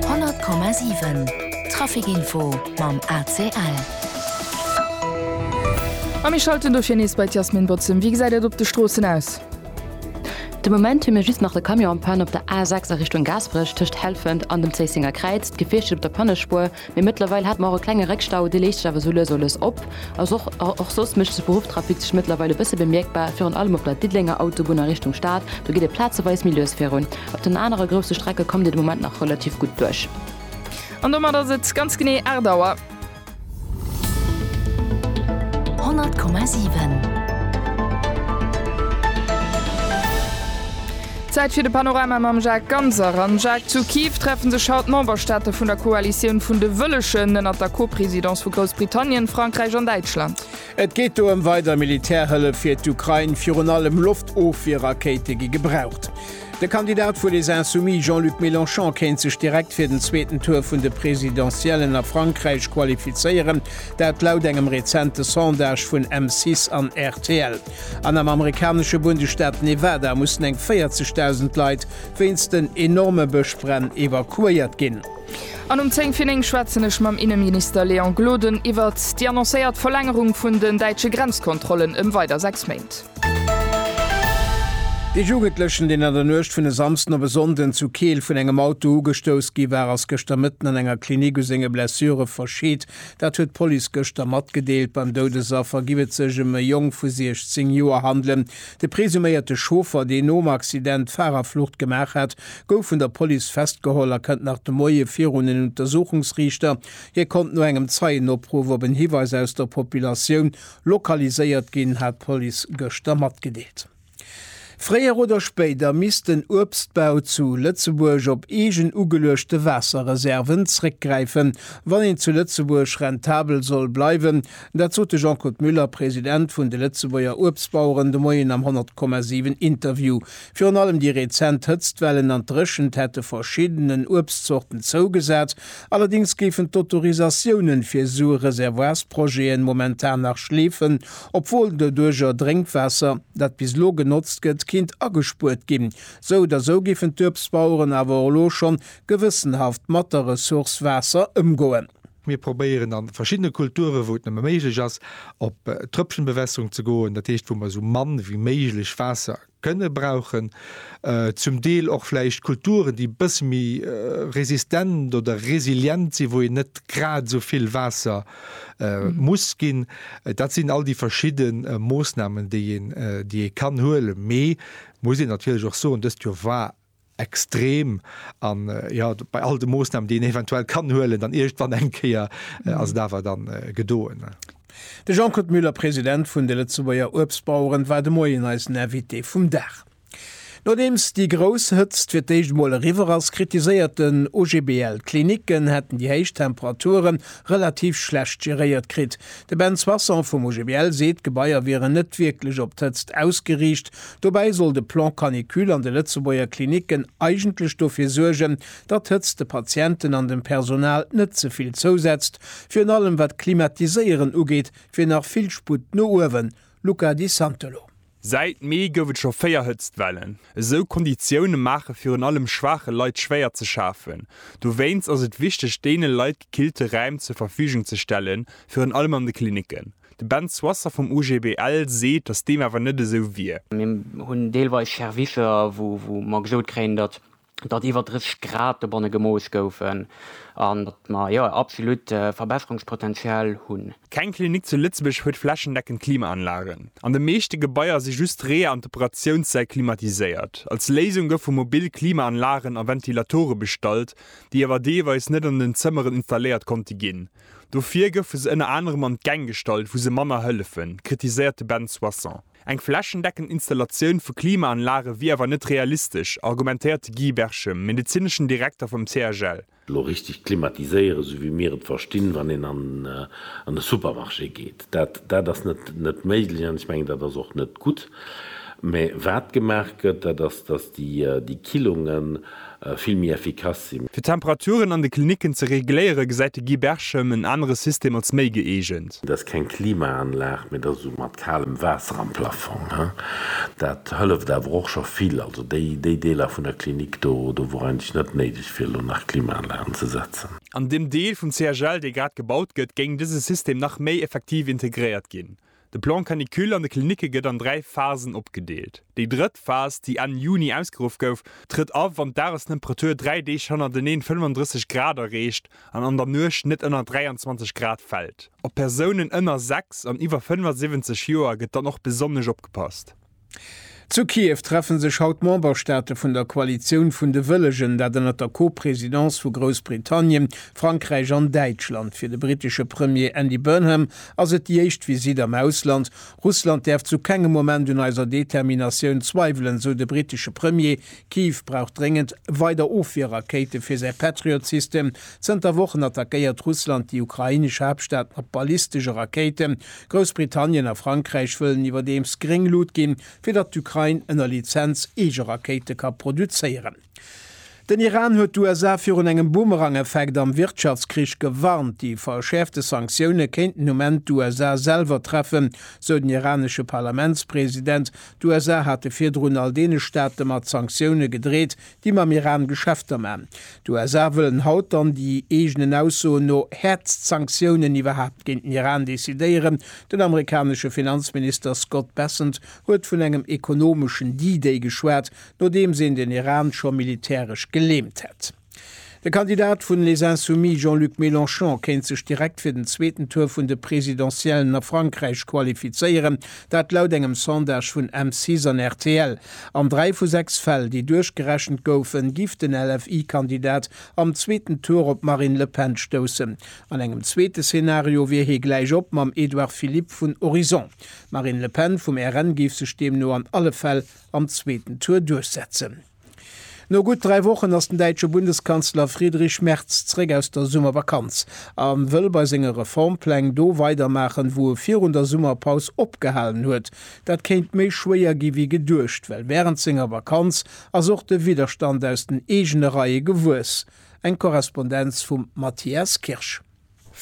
100,7 Trafic Info mam ACL. A mir schalten dofir nees bei d'Jasmin Bozem. Wéi gesäit et op de Stroossen aus? De Moment hu mir just nach de Camion en panne op der A6 a Richtung Gaasperech tëscht Helfent an dem Zéissinger Kräiz. D'Gefiicht steet op der Pannespuer. Mee mëttlerweil hat mer och e klenge Réckstau, dee léist sech awer sou lues a lues op. Och soss mécht de Spruchtrafic sech mëttlerweil e bësse bemierkbar, virun allem op der Diddelenger Autobunn a Richtung Stad, do geet et plazeweis méi lues virun. Op den anere grousse Strecke kommt ee de Moment nach relativ gutt duerch. An domat ass et ganz genee 8 Auer. 100,7. Zäit fir de Panorama mam Jacques Ganser. Am Jacques zu Kiew treffe sech haut d'Memberstaate vun der Koalitioun vun de Wëllegen, ënnert der Co-Presidence vu Groussbritannien, Frankräich an Däitschland. Et geet do ëm weider Militärhëllef fir d'Ukrain, virun allem Loftofwierrakéite gi gebraucht. De Kandidat vu Les Insoumis, Jean-Luc Mélenchon, kéint sech direkt fir den zweeten Tour vun de Presidentiellen a Frankräich qualifizéieren, dat laut engem rezente Sondage vun M6 an rtl. An am amerikanesche Bundesstaat Nevada mussen eng 40.000 Leit wéinst den enorme Bëschbränn evakuéiert ginn. An um 10 fir 9 schwätzen ech mam Inneminister Léon Gloden iwwert déi annoncéiert Verlängerung vun den däitsche Grenzkontrollen ëm weider 6 Méint. De Jugendlechen, deen an der Nuecht vun e Samsden op e Sonnden zu Keel vun engem Auto ugestouss gi war, ass gëschter Mëtten an enger Klinik u senge Blessure verscheet. Dat huet d'Police gëschter matgedeelt. Beim Doudesaffer giff et sech em e Jong vu 16 Joer handelen. De presuméierte Chauffer, deen nom Accident d'Fahrerflucht gemaach hat, gouf vun der Police festgeholl a kënnt nach de Moie virun en Untersuchungsriichter. Hie konnt no engem Zeienopruff op en Hiweis aus der Populatioun lokaliséiert ginn, hat d'Police gëschter matgedeelt. Fréier oder spéider misst den Uebstbau zu Lëtzebuerg op eegen ugeluechte Waasserreserven zréckgräifen, wann een zu Lëtzebuerg rentabel soll bleiwen. Dat sot de Jean-Claude Muller, President vun de Lëtzebuerger Uebstbaueren, de Moien am 100,7 Interview. Virun allem déi rezent Hëtztwellen an d'Dréchent hätte verschiddenen Uebstzorten zougesat. Allerdéngs géifen d'Autorisatiounen fir esou Reservoirsprojeten momentan nach schleefen, Obwuel doduerger Drénkwaasser, dat bis elo genotzt gëtt, kinnt agespuert ginn. Sou oder sou giffen d'Uebstbaueren awer elo schonn gewëssenhaft mat der Ressource Waasser ëmgoen. Mir probéieren a verschiddene Kulturen, wou et nëmme méiglech ass, op Tröpfchenbewässerung ze goen, dat heescht wou mer esou mann ewéi méiglech Waasser kënne brauchen, zum Deel och vläicht Kulturen, déi e bësse méi resistent oder resilient sinn, wou een net grad esou vill Waasser muss ginn. Dat sinn all déi verschidde Moossnamen, déi ee kann huelen. Mee muss een natierlech och soen, dëst Joer war extrem an jo bei all de Moosnamen déi een eventuell kann huelen dann iergdwann eng Kéier ass et awer dann gedoen. De Jean-Claude Muller, President vun de Lëtzebuerger Uebstbaueren, war de Moien eisen Invité vum Dag. Nodeems déi grouss Hëtzt fir d'éischt emol eriwwer ass, kritiséiert den OGBL, d'Klinicken hätten déi héich Temperature relativ schlecht geréiert kritt. De Ben Soissons vum OGBL seet, d'Gebaier wieren net wierklech op d'Hëtzt ausgeriicht, Dobäi soll de Plan Canicule an de Lëtzebuerger Klinicken eigentlech dofir suergen, datt d'Hëtzt de Patienten an dem Personal net ze vill zousetzt, virun allem wat d'Klimatiséieren ugeet, wier nach vill Sputt no uewen, Luca Di Santolo. Säit Mee gouf et scho véier Hëtztwellen. Esou Konditioune maache virun allem schwaache Leit schwéier ze schafen. Dowéinst ass et wichteg, deene Leit gekillte Räim zur Verfügung ze stellen, virun allem an de Klinicken. De Ben Soisser vum OGBL seet, datt deem awer net esou wier. Mir hunn deelweis Servicer, wou mer gesot kréien, datt iwwer 30 Grad dobanne gemooss goufen an datt mer, jo, absolut Verbesserungspotenzial hunn. Keng Klinik zu Lëtzebuerg huet flächendeckend Klimaanlagen. An de meeschte Gebaier si just d'Reeër an d'Operatiounssäll klimatiséiert. Als Léisung goufe mobil Klimaanlagen a Ventilatore bestallt, déi awer deelweis net an den Zëmmeren installéiert konnte ginn. Dofir goufe se ënner anerem an d'Gäng gestallt, wou se manner hëllefen, kritiséiert de Ben Soisson. Eng flächendeckend Installatioun vu Klimaanlage wier awer net realistesch, argumentéiert de Guy Berchem, medezineschen Direkter vum CHL. Elo richteg klimatiséieren, esou wéi mir et verstinn, wann een an de Supermarché geet, dat ass net méiglech. An ech mengen, dat ass och net gutt. Mä wat gemaach gëtt, dat ass, datt déi Killungen vill méi effikass sinn. Fir d'Temperaturen an de Klinicken ze regléiere gesäit de Guy Berchem en anere System als méi gëeegent. Et ass keng Klimaanlag, mee et ass esou mat kalem Waasser am Plafong. Dat hëlleft awer och scho vill. Also déi Deeler vun der Klinik do, do wor eigentlech net néideg fir elo nach Klimaanlagen ze setzen. An deem Deel vum CHL, dee grad gebaut gëtt, géing dëse System nach méi effektiv integréiert ginn, De Plan Canicule an de Klinicke gëtt an dräi Phasen opgedeelt. Déi drëtt Phas, déi Enn Juni ausgeruff gouf, trëtt a wann d'Dagestemperatur dräi Deeg hannerteneen 35 Grad erreecht an an der Nuecht net ënner 23 Grad fält. Op Persounen ënner 6 an iwwer 75 Joer gëtt dann och besonnesch opgepasst. Zu Kiew treffe sech haut d'Memberstaate vun der Koalitioun vun de Wëllegen, dat ënnert der Co-Presidence vu Groussbritannien, Frankräich an Däitschland. Fir de brittesche Premier Andy Burnham ass et déi éischt Visitt am Ausland. Russland däerf zu kengem Moment un eiser Determinatioun zweiwelen, esou de brittesche Premier. Kiew brauch dréngend weider Ofwierrakéite fir säi Patriot-System. Zënter Wochen attackéiert Russland déi ukrainesch Haaptstad mat ballistesche Rakéiten. Groussbritannien a Frankräich wëllen iwwerdeems gréng Lut ginn, fir datt d'Ukrain ënner Lizenz eege Rakéite ka produzéieren. Den Iran huet d'USA virun engem Boomerang-Effekt am Wirtschaftskrich gewarnt. Déi verschäerfte Sanktioune kéinten um Enn d'USA selwer treffen, sou den iranesche Parlamentspresident. D'USA hate virdrun all deene Staate mat Sanktioune gedreet, déi mam Iran Geschäfter maan. D'USA wëllen haut dann, déi eegenen Aussoen no, häertst Sanktiounen iwwerhaapt géint den Iran decidéieren. Den amerikanesche Finanzminister Scott Bessent huet vun engem ekonomeschen D-Day geschwat, nodeems een den Iran scho militäresch geleemt hätt. De Kandidat vun Les Insoumis Jean-Luc Mélenchon kéint sech direkt fir den zweeten Tour vun de Presidentiellen a Frankräich qualifizéieren, dat laut engem Sondage vun M6 an rtl. An dräi vu sechs Fäll, déi duerchgerechent goufen, giff den LFI-Kandidat am zweeten Tour op d'Marine Le Pen stoussen. An engem zweete Szenario wier hie gläich op mam Edouard Philippe vun Horizon. D'Marine Le Pen vum RN géif sech deemno an alle Fäll am zweeten Tour duerchsetzen. No gutt dräi Wochen ass den däitsche Bundeskanzler Friedrich Merz zréck aus der Summervakanz a wëll bei senge Reformpläng do weidermaachen, wou e virun der Summerpaus opgehalen huet. Dat kéint méi schwéier gi wéi geduecht, well wärend senger Vakanz ass och de Widderstand aus den eegene Reie gewuess. Eng Korrespondenz vum Matthias Kirsch.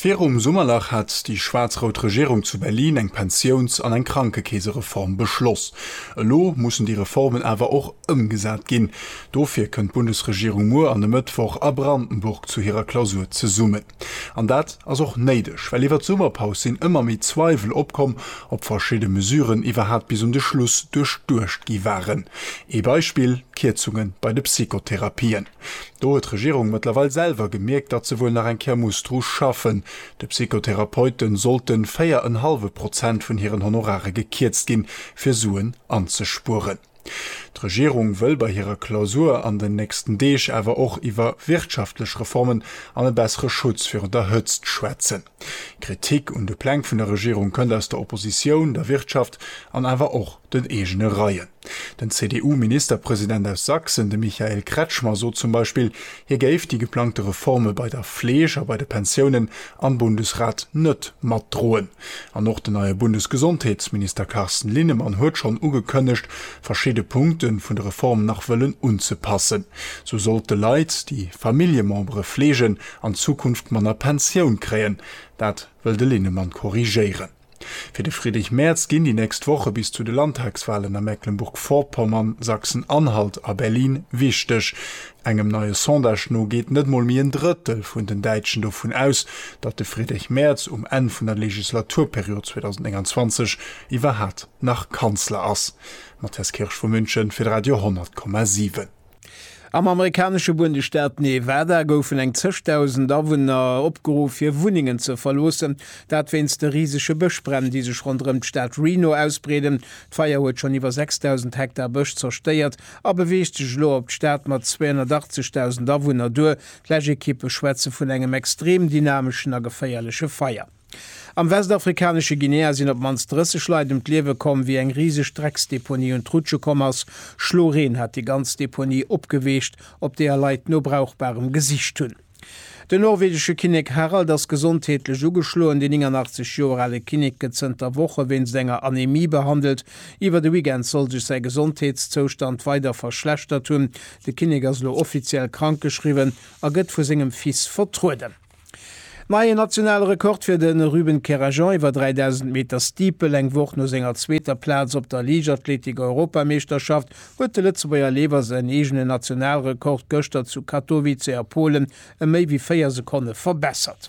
Virum Summerlach hat déi schwaarz-rout Regierung zu Berlin eng Pensiouns an eng Krankekeesereform beschloss. Elo mussen déi Reformen awer och ëmgesat ginn. Dofir kënnt d'Bundesregierung muer an e Mëttwoch a Brandenburg zu hirer Klausur zesummen. An dat ass och néideg, well iwwer d'Summerpaus sinn ëmmer méi Zweiwel opkomm, ob verschidde Mesuren iwwerhaapt bis un de Schluss duerchduecht gi waren. Ee Beispill, d'Kierzunge bei de Psychotherapien. Do huet d'Regierung mëttlerweil selwer gemierkt, datt se wuel nach eng Kéier muss dru schaffen. De Psychotherapeute sollte 4 en hallwe Prozent vun hiren Honorare gekierzt ginn, fir Suen anzespueren. D'Regierung wëll bei hirer Klausur an den nächsten Deeg awer och iwwer wirtschaftlech Reformen an e bessere Schutz virun der Hëtzt schwätzen. Kritik un de Pläng vun der Regierung kënnt aus der Oppositioun, der Wirtschaft an awer och den eegene Reien. Den CDU-Ministerpresident aus Sachsen, de Michael Kretschmer, sot zum Beispill, hie géif déi geplangte Reforme bei der Fleeg a bei de Pensiounen am Bundesrat net matdroen. An och den neie Bundesgesondheetsminister Carsten Linnemann huet schonn ugekënnegt, verschidde Punkte vun de Reform nach wëllen unzepassen. Sou sollt de Leit, déi Familljemembere fleegen, an Zukunft manner Pensioun kréien, dat wëll de Linnemann korrigéieren. Fir de Friedrich Merz ginn déi nächst Woche bis zu de Landtagswalen a Mecklenburg-Vorpommern, Sachsen-Anhalt a Berlin wichteg. Engem neie Sondage no geet net mol méi en Drëttel vun den Däitschen dovun aus, datt de Friedrich Merz um Enn vun der Legislaturperiod 2029 iwwerhat nach Kanzler ass. Matthias Kirsch vu München fir d'Radio 100,7. Am amerikanesche Bundesstaat Nevada goufen eng zeg Dausend Awunner opgeruff, hir Wunnengen ze verloossen, dat wéinst de risege Bëschbränn, déi sech ronderëm d'Stad Reno ausbreeden. D'Feier huet schonn iwwer 6.000 Hektar Bësch zerstéiert a beweegt sech elo op d'Stad mat 280.000 Awunner duer. D'Läschekippe schwätze vun engem extrem dynameschen a geféierleche Feier. Am westafrikanesche Guinea sinn op d'mannst 30 Leit ëm d'Liewe komm, wéi eng riseg Drecksdeponie un d'Rutsche komm ass. Schloreen hat déi ganz Deponie opgeweecht, op deeër Leit no Brauchbarem gesicht hunn. Den norwegesche Kinnek Harald ass gesondheetlech ugeschloen. Den 89 Joer ale Kinnek gëtt zënter Woche wéinst enger Anemie behandelt. Iwwer de Weekend soll sech säi Gesondheetszoustand weider verschlechtert hunn. De Kinnek ass elo offiziell krankgeschriwwen a gëtt vu sengem Fils vertrueden. Neien nationale Rekord fir de Ruben Kerajan iwwer 3.000 Meter Steeple. Eng Woch no senger zweeter Plaz op der Liichtathletik-Europameeschterschaft huet de Lëtzebuerger Leefer säin eegenen Nationalrekord gëschter zu Katowice a Polen ëm méi wéi 4 Sekonne verbessert.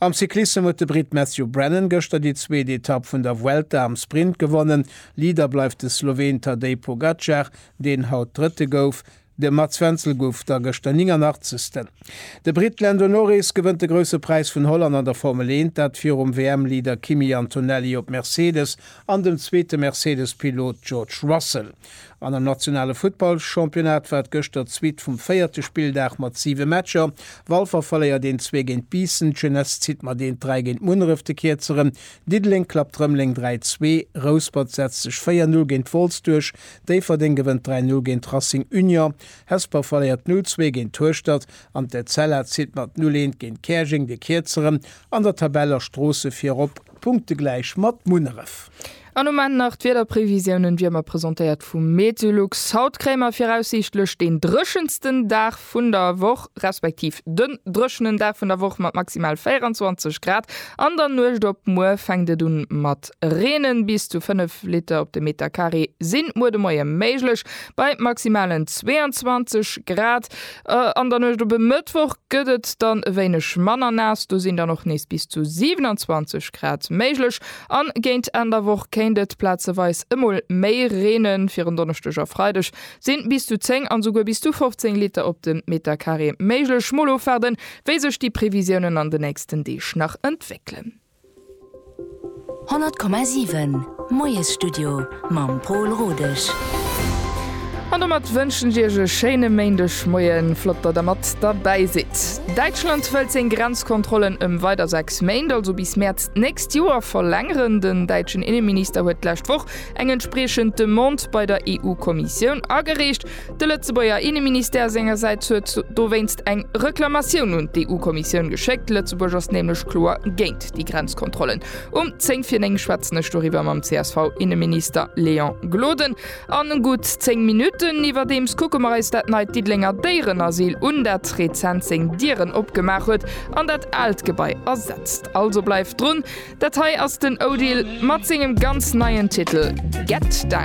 Am Cyclissem huet de Brit Matthew Brennan gëschter déi zweet Etapp vun der Vuelta am Sprint gewonnen. Leader bleift de Sloween Tadej Pogacar, deen haut Drëtte gouf. De Mats Wenzel gouf da gëschter 89. De Britt Lando Norris gewënnt de Grousse Präis vun Holland an der Formel 1, dat virum WM-Leader Kimi Antonelli op Mercedes an dem zweete Mercedes-Pilot George Russell. An am nationale Futtballchampionnat war et gëschter d'Suite vum véierte Spilldag mat siwe Matcher, Walfer verléiert een zwee géint Biissen, d'Jeunesse zitt mat eent dräi géint Munneref, de Kierzeren Diddeleng klappt Rëmeleng 3, 2, Rouspert setzt sech 4, 0 géint Wolz duerch, Déifferdeng gewënnt 3-0 géint Racing Union, Hesper verléiert 0-2 géint Hueschtert an d'Etzella zitt mat 0-1 géint Käerjeng de Kierzeren an der Tabell a Stroosse virop, punktegläich mat Munneref. An um Enn nach d'Wiederprevisiounen, wéi ëmmer presentéiert vum Meteolux. Haut kréie mer viraussiichtlech deen dréchensten Dag vun der Woch respektiv den dréchenen Dag vun der Woch mat maximal 24 Grad. An der Nuecht op muer fänkt et un mat reenen, bis zu 5 Liter op de Meter Carré sinn muer de Moie méiglech bei maximalen 22 Grad. An der Nuecht op e Mëttwoch gëtt et dann e wéineg manner naass, do sinn dann och nees bis zu 27 Grad méiglech. An géint Enn der Woch kéint et plazeweis emol méi reenen, fir en Donneschdeg a Freideg Sinn bis zu 10 an esouguer bis zu 15 Liter op den Meter Carré méiglech? Mol ofwaarden wéi sech déi Previsiounen an den nächsten Deeg nach entwéckelen. 100,7 Moiesstudio mam Pol Rodesch. An domat wënschen ech Iech e schéine Méindegmoien. Flott datt der mat derbäi sidd. Däitschland wëllt seng Grenzkontrollen ëm weider 6 Méint, also bis Mäerz d'nächst Joer verlängeren. Den däitschen Inneminister huet d'lescht Woch eng entspriechend Demande bei der EU-Kommissioun agereecht. De Lëtzebuerger Inneministère sengersäits huet dowéinst eng Reklamatioun un d'EU-Kommissioun geschéckt. Lëtzebuerg ass nämlech kloer géint déi Grenzkontrollen. Um 10 fir 9 schwätzen ech doriwwer mam CSV-Inneminister Léon Gloden. A gutt 10 Minutten iwwerdeems kucke mer eis dat neit Diddelenger Déierenasyl un, dat rezent seng Dieren opgemaach huet an dat aalt Gebai ersetzt. Also bleift drun! Dat hei ass den Odile mat sengem ganz neien Titel Get Down.